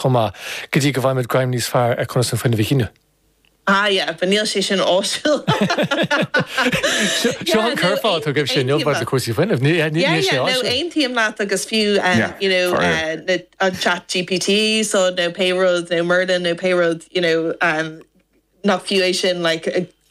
chomh maith, go dtí go bhfaighimid greim níos fearr ar conas an fuinneamh a shíneadh. Ah yeah, but níl sé sin áisiúil. Seo an curfá atá agaibhse inniu maidir le cúrsaí fuinnimh, níl sé áisiúil. Yeah, yeah, no, aontaím leat agus fiú you know an chat GPT so nó pé rud nó Merlin nó pé rud you know nach fiú é sin like.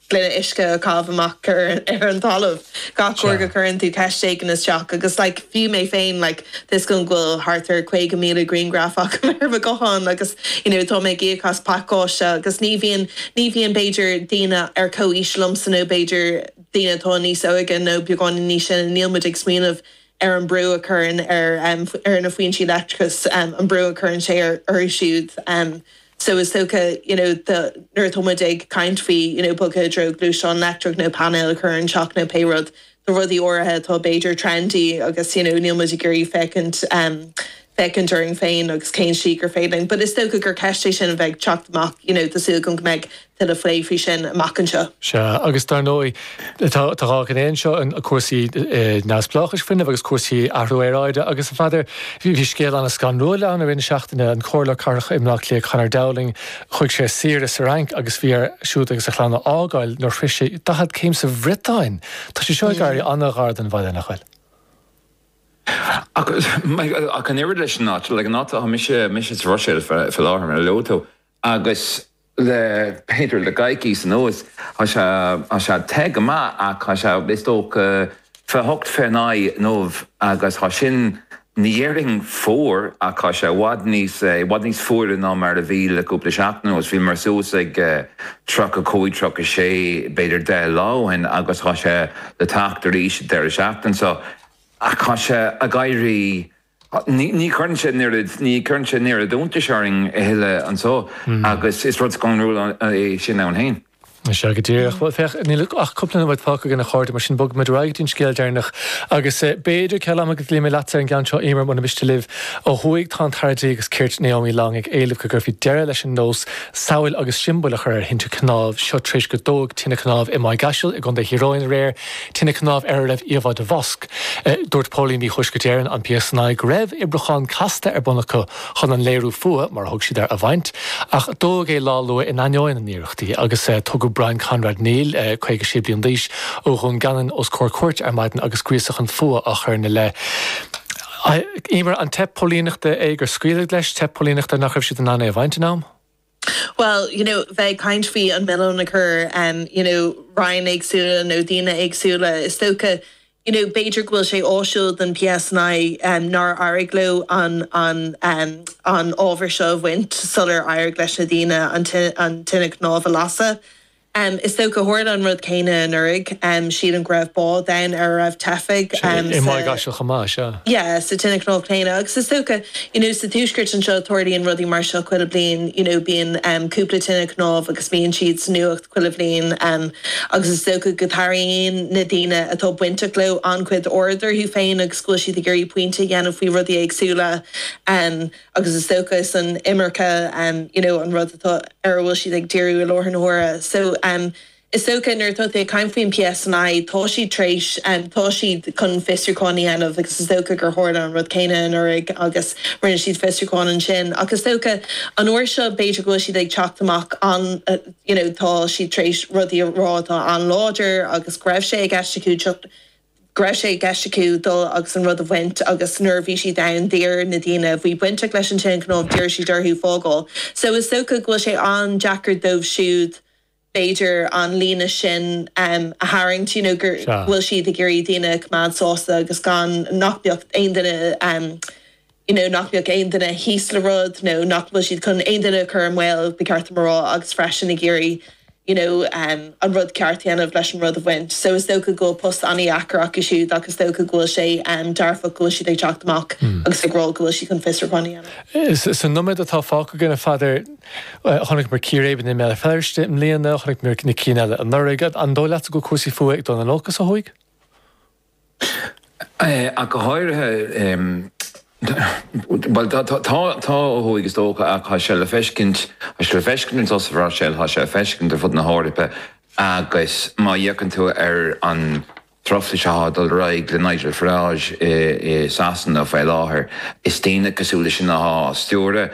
gloine uisce a chaitheamh amach ar an talamh gach uair go gcuireann tú ceist éigin isteach agus like fiú mé féin like tá a fhios agam go bhfuil thart ar 50,000 grianghraf agam ar mo ghuthán agus you know tá mé ag íoc as pacáiste agus ní bhíonn ní bhíonn b'fhéidir daoine ar comhaois liomsa nó b'fhéidir daoine atá níos óige nó beagáinín níos sine níl muid ag smaoineamh ar an brú a chuireann ar ar na foinsí leictreachais an brú a chuireann sé orthu siúd. So is dócha, you know, the, nuair atá muid ag caint faoi, you know, bogadh i dtreo gluaisteán leictreach nó painéil a chur ar an teach nó pé rud, tá rudaí áirithe atá b'fhéidir trendy agus, you know, níl muid ag iarraidh féachaint, em, féachaint orainn féin agus cén slí gur féidir linn. But is dócha gur ceist é sin a bheidh ag teacht amach, you know, tá súil agam go mbeidh. tuilleadh faoi sin amach anseo. Sea, agus dar ndóigh, tá dhá ghné anseo, cúrsaí neamhspleáchais fuinnimh agus cúrsaí athrú aeráide agus, a Pheadair, bhí scéal ana-scanrúil ann i rith na seachtaine, an Comhairleoir Cathrach i mBleá Cliath, Conor Dowling, chuaigh sé ar saoire sa Fhrainc agus bhí air siúd agus a chlann a fhágáil nuair shroich sé 40 céim sa Bhriotáin! Tá sé seo ag éirí ana-ghar don bhaile, nach bhfuil? Ach an oiread leis an áit, an áit atá mise sa Bhruiséil faoi láthair, mar a luaigh tú. Agus le b'fhéidir le coicís anuas, tá sé, tá sé te go maith ach tá sé, is dócha, fiche hocht fiche naoi inniu agus tá sin, ní dhéarfainn fuar ach tá sé i bhfad níos, i bhfad níos fuaire ná mar a bhí le cúpla seachtain anuas. Bhíomar suas ag tríocha cúig, tríocha sé b'fhéidir deich lá ó shin agus tá sé le teacht arís an deireadh seachtain seo. Ach tá sé ag éirí Ní chuireann sé an oiread, ní chuireann sé an oiread iontais orainn a thuilleadh anso agus is rud scanrúil é sin ann féin. Is ea, go díreach. Bhuel, féach, níl ach cúpla nóiméad fágtha againn, a chairde, mar sin bogfaidh muid ar aghaidh go dtí an scéal deireanach agus b'fhéidir, ceal ama, go gcloífidh mé leatsa ar an gceann seo, Éimear, mura miste libh. Ó thuaidh tá an tAire Dlí agus Cirt, Naomi Long, ag éileamh go gcuirfí deireadh leis an nós samhail agus siombail a chur ar thinte cnámh. Seo tar éis gur dódh tine chnámh i Maigh gCaisil i gContae Thír Eoghain aréir, tine chnámh ar a raibh íomhá de mhosc. Dúirt Póilíní Thuaisceart Éireann, an PSNI, go raibh oibriúchán casta ar bun acu chun an léiriú fuatha, mar a thug siad air, a bhaint, ach dódh é lá luath in ainneoin a n-iarrachtaí agus tugadh Brian Conrad Neill, 56 bliain d'aois, ó Dhún Geanainn os comhair cúirte ar maidin agus gríosú chun fuatha á chur ina leith. Eimear, an teip póilíneachta é gur scaoileadh leis, teip póilíneachta nach raibh siad in ann é a bhaint in am? Bhuel, you know, bheith ag caint faoi an mhilleán a chur, you know, Roinn éagsúla nó daoine éagsúla, is dócha, you know, b'fhéidir go bhfuil sé áisiúil don PSNI nár éirigh leo an an ábhar seo a bhaint sular éirigh leis na daoine an tine chnámh a lasadh. Is dócha tharla an rud céanna anuraidh, sílim go raibh bád ann ar a raibh teifigh. I Maigh gCaisil chomh maith, sea. Yeah, sa tine chnámh chéanna agus is dócha, you know, sa tuaisceart anseo tarlaíonn rudaí mar seo chuile bliain, you know, bíonn cúpla tine chnámh agus bíonn siad sa nuacht chuile bhliain agus is dócha go dtarraingíonn na daoine atá bainteach leo an-chuid aird orthu féin agus go bhfuil siad ag iarraidh pointe a dhéanamh faoi rudaí éagsúla. agus is dócha is an imirce you know an rud atá ar a bhfuil siad ag díriú i láthair na huaire so is dócha nuair atá tú ag caint faoin PSNI tá siad tar éis tá siad chun fiosrúchán a dhéanamh agus is dócha gur tharla an rud céanna anuraidh agus rinne siad fiosrúchán ansin ach is dócha an uair seo b'fhéidir go bhfuil siad ag teacht amach an you know tá siad tar éis rudaí a rá atá an-láidir agus go raibh sé i gceist acu teacht go raibh sé i gceist acu dul agus an rud a bhaint agus nuair a bhí siad ann d'iarr na daoine a bhí bainteach leis an tine chnámh, d'iarr siad orthu fágáil so is dócha go bhfuil sé an-deacair dóibh siúd b'fhéidir an líne sin a tharraingt you know gur, go bhfuil siad ag iarraidh daoine a choimeád sásta agus gan, nach mbeadh aon duine. you know nach mbeadh aon duine thíos le rud nó nach bhfuil siad chun aon duine a chur i mbaol, ba cheart dom a rá, agus freisin ag iarraidh you know an rud ceart a dhéanamh leis an rud a bhaint. So is dócha go bhfuil post an-deacair acu siúd ach is dócha go bhfuil sé dearfach go bhfuil siad ag teacht amach agus ag rá go bhfuil siad chun fiosrúchán a dhéanamh. Sa nóiméad atá fágtha againn, a Pheadair, chonaiceamar círéibeanna i mBéal Feirste i mbliana, chonaiceamar na cinn eile anuraidh, an dóigh leatsa go bhfuil cúrsaí fuatha ag dul in olcas ó thuaidh? Go háirithe, bhuel, tá, tá ó thuaidh, is dócha, ach tá sé le feiscint, tá sé le feiscint ansan sa Bhruiséil, tá sé le feiscint ar fud na hEorpa agus má fhéachann tú ar an truflais atá ag dul ar aghaidh le Nigel Farage i Sasana faoi láthair, is daoine cosúil leis sin atá á stiúradh.